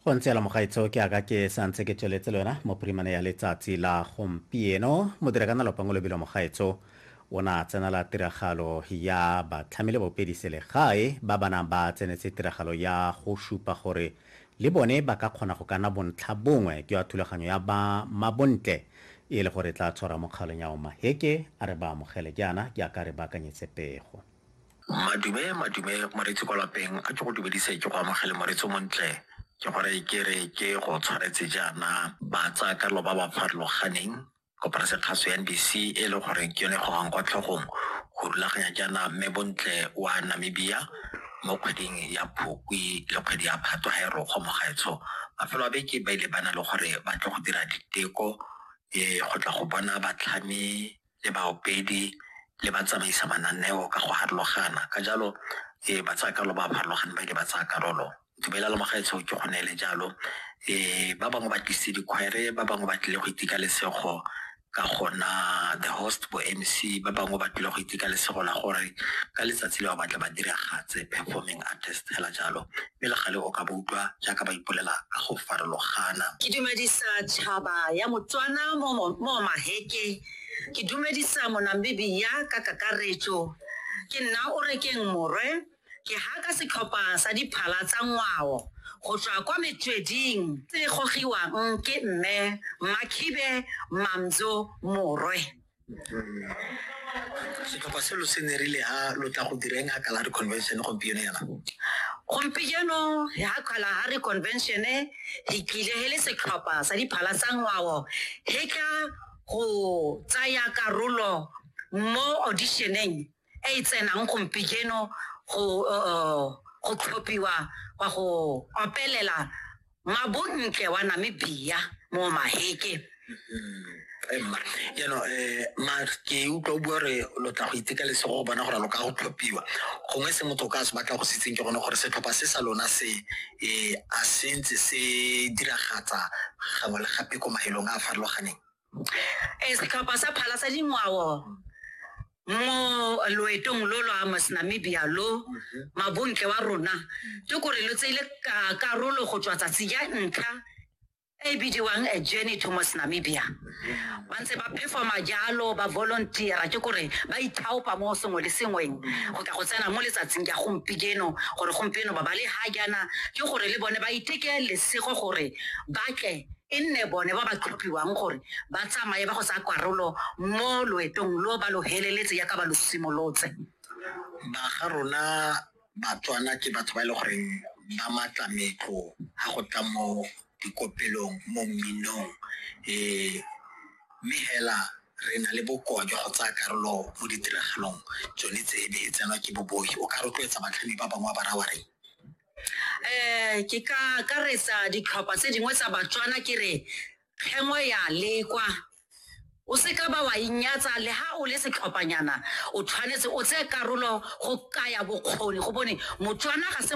go ntse la mogaitseo ke aka ke santse ke tsweletse le wena mo primane ya letsatsi la gompieno modira ka nalopa ngo lebilo mogaitso o ne a tsenela tiragalo ya batlhamile bopedi selegae ba ba nang ba tsenetse tiragalo ya go supa gore le bone ba ka kgona go kana bontlha bongwe ke wa thulaganyo ya ba mabontle e le gore tla tshwara mokgalong ya omaheke a re ba amogele jaana ke aka re baakanyetse pego Madume, madume moreetsi kwa lapeng a ke go dumedise ke go amogele moreetsi montle ke gore ke re ke go tshwanetse jaana ba tsaya karolo ba ba farologaneng koporase kgaso ya NBC e le gore ke yone gogang kwa tlhogong go rulaganya jaana mme bontle wa Namibia mo kgweding ya Phukwi le kgwedi ya Phatwe ga e rogo mo gaetsho mafelo a beke ba ile ba na le gore ba tle go dira diteko e go tla go bona batlhami le baopedi le ba tsamaisa mananeo ka go harologana ka jalo e ba tsaya karolo ba ba harologane ba ile ba tsaya karolo dumela le mogaetsho ke go neele jalo um ba bangwe ba tlise dikgwere ba bangwe ba tlile go itika lesego ka gona the host bo mc ba bangwe ba tlile go itika lesego la gore ka letsatsi le ba batla ba diragatse performing artist fela jalo mme le gale o ka ba utlwa jaaka ba ipolela ka go farologana. Ke dumedisa tšhaba ya Motswana mo mo Maheke, ke dumedisa Monamibia ka kakaretso. Ke nna Orekeng Morwe, ke haka setlhopha sa diphala tsa ngwao go tswa kwa Metsweding se gogiwang ke Mme Makhibe Mamzo Morwe. setlhopha se lo se nerile ha lo tla go direng ha kalahari convention gompieno yana gompieno ya kalahari convention re tlile he le setlhopha sa diphala tsa ngwao he tla go tsaya karolo mo auditioneng e e tsenang gompieno go uh, go tlhophiwa wa go opelela mabontle wa namibia mo maheke emma jaanong um ma ke utlwa o bua gore lo tla go iteka lesego go bona gore lo ka go tlhophiwa gongwe se motho o ka se batla go se itseng ke gone gore setlhopha se sa lona se um a se ntse se diragatsa gangwe le gape ko maelong a a farologaneng Ee, setlhopha sa phala sa dingwao mo loetong lo lwa Amos Namibia lo mabontle wa rona ke gore lo tseile ka- karolo go tswa tsatsi ya ntlha e e bidiwang a journey to Mos Namibia ba ntse ba performa jalo ba volunteera ke gore ba ithaopa mo sengwe le sengweng go tla go tsena mo letsatsing ya gompieno gore gompieno ba ba le ha jaana ke gore le bone ba iteke lesego gore ba tle e nne bone ba ba tlhophiwang gore ba tsamaye ba go tsaya karolo mo loetong lo ba lo heleletse yaka ba lo simolotse ba ga rona batswana ke batho ba e le goreng ba matla metlo ga go tla mo dikopelong mo mminong um mme hela re na le bokoa jwa go tsaya karolo mo ditiragalong tsone tse e be e tsenwa ke bobogi o ka rotloetsa batlhami ba bangwe ba ba raya wa reng um ke ka akaretsa ditlhopha tse dingwe tsa batswana ke re kgengwe ya lekwa o seka ba wa inyatsa le ha o le setlhophanyana o tshwanetse o tseye karolo go kaya bokgoni go bone motswana ga se